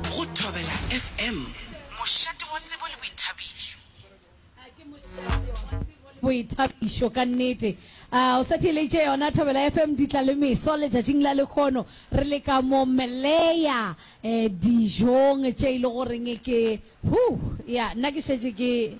Go Thobela FM. Mošate wa tsebo le boithabišo. Boithabišo ka nnete. Ah, o sa theeleditše yona Thobela FM di tla le meso letšatšing la lekgono re le ka mo meleya eh, dijong tše e le goreng ke huh, ya nna ke šetše ke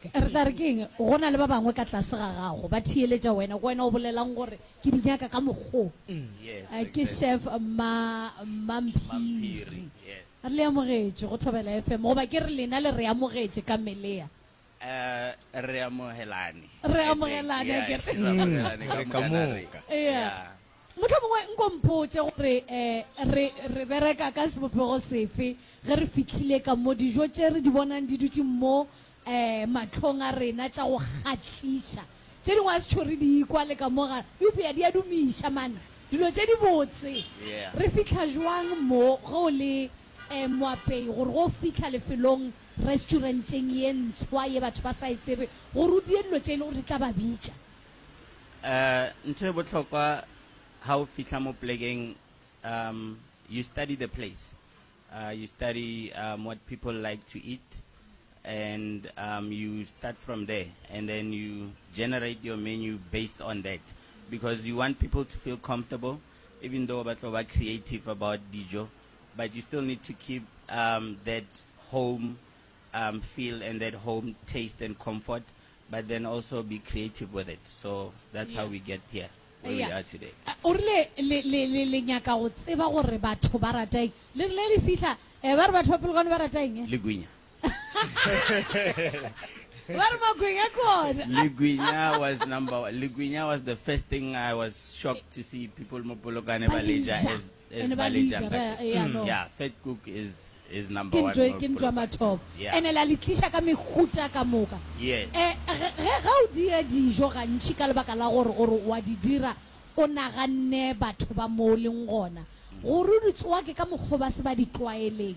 Re tla re ke eng? Go na le ba bangwe ka tlase ga gago ba theeletša wena. Ke wena o bolelago gore ke di nyaka ka mokgo. Ke Chef Mma, Mma Mphiri. Re le amogetše go Thobela FM. Goba ke re lena le re amogetše ka melea. Re amogelane. Re amogelane akere. Re ka moka. Ea. Mohlomongwe nko mpotše gore re, re bereka ka sebopego sefe ge re fihlile ka mo, dijo tše re di bonang di dutše mo mahlong a rena, tša go kgahliša. Tše dingwe a se tšho re di kwa le ka mo ga, eupša di a dumiša, man, dilo tše dibotse. Re fihla bjang mo, ge o le moapei, gore ge o fihla lefelong, restuarenteng ye ntshwa ye batho ba sa e tsebe, gore o die dilo tše e lego gore di tla ba bitša? Ntho e bohlokwa ha o fihla mo plekeng um you study the place uh, you study um, what people like to eat and um, you start from there and then you generate your menu based on that because you want people to feel comfortable even though ba tlo ba creative about dijo but you still need to keep um, that home um, feel and that home taste and comfort But then also be creative with it, so that's how we get here where we are today. O rile le, le, le, le nyaka go tseba gore batho ba rata eng. Le rile le fihla, eh, ba re batho ba Polokwane ba rata eng? Le gwinya. Ba re magwinya ke ona. Le gwinya was number one. Le gwinya was the first thing I was shocked to see people mo Polokwane ba le ja as ene ba le ja ba ya no yeah fat cook is is number one kintwe kintwe mathomo yeah. ene la litlisha ka mekhuta ka moka yes eh ge ga o dire dijo gantši ka lebaka la gore gore wa di dira o naganne batho ba mo leng gona gore di tsoa ke ka mokgwa ba se ba di tlwaeleng